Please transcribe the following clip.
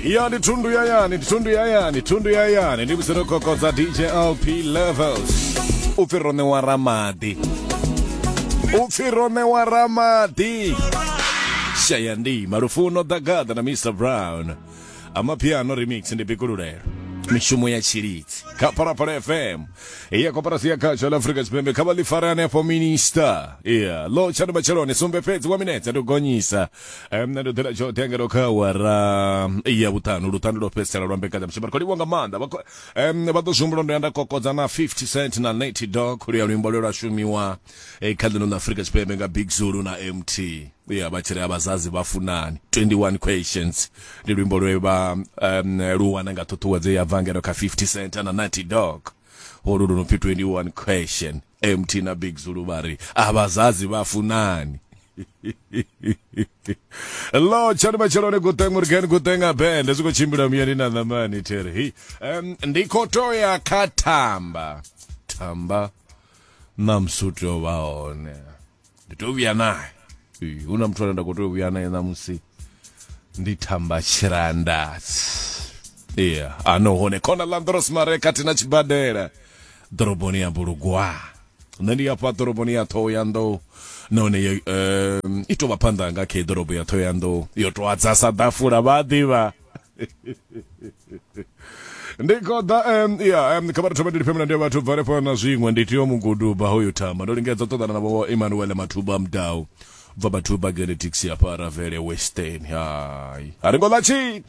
ya ndi thundu ya yani ndi thundu ya yani thundu ya yani ndi musero kokodza dj lp levels u pfi ro ṋewa ramadi u pfi ro ṋewa ramadi shaya ndima lufuno ḓagaḓa na mr brown amapiano remix ndi bikululelo mishumo ya tshilidzi kha phalaphala fm iya koporasi ya khatsho la afrika tshipembe kha vha ḽi fare hanefho minista iya lo tshani matsheloni sumbe fhedzi wa minetse ndi u gonyisa um, nṋe ndo ḓela tsho tenga ndo kha awara ya vhuṱanu luṱanu lwo fhedzisela lwa mbekanyamushumo ri khou livhwa nga maanḓa vha khou- em, vha ḓo zwihumbula ndo ya nda kokodza na 50 cent na nate dog luya luimbo lwe lwa shumiwa eh, kha ḽino ḽa afurika tshipembe nga big zulu na mt ya vha tshi ri abazazi vha funani 21 questions ndi luimbo lwe vha em, lu wana nga ṱhuṱhuwedzo ya bva ngeno kha 50 cent na nate dog holu lu no pfi 21 question mt na big zulu vha ri a vhazazi vha funani lo tshani matshiloni guteng murgen guteng abend zwi khou tshimbila muyani na ṋamani theri um, ndi khou to ya kha thamba thamba na msuti o vha hone ndi tea u vhuya naye Ee, hu na muthu ane nda khou tea u vhuya naye ṋamusi ndi thamba tshirandatsi iya ano hone khona landros mare kati na tshibadela ḓoroboni ya bulugwa nṋe ndi afha ḓoroboni ya ṱhoho ya nḓou nahone yo, em, i tou vha phanḓa nga khe ḓorobo ya ṱhoho ya nḓou yo tou adza sa ḓafula vha a ḓivha ndi koda um, ya um, kha vhathu vha ndilifhe mulandu vhathu bva lefana na zwiṅwe ndi tiyo muguduba hoyo tama ndo lingedza u ṱoḓana na vho emmanuel mathuba mdau bva vhathu ba genetics ya paravele western hai a ri ngo ḽa tshit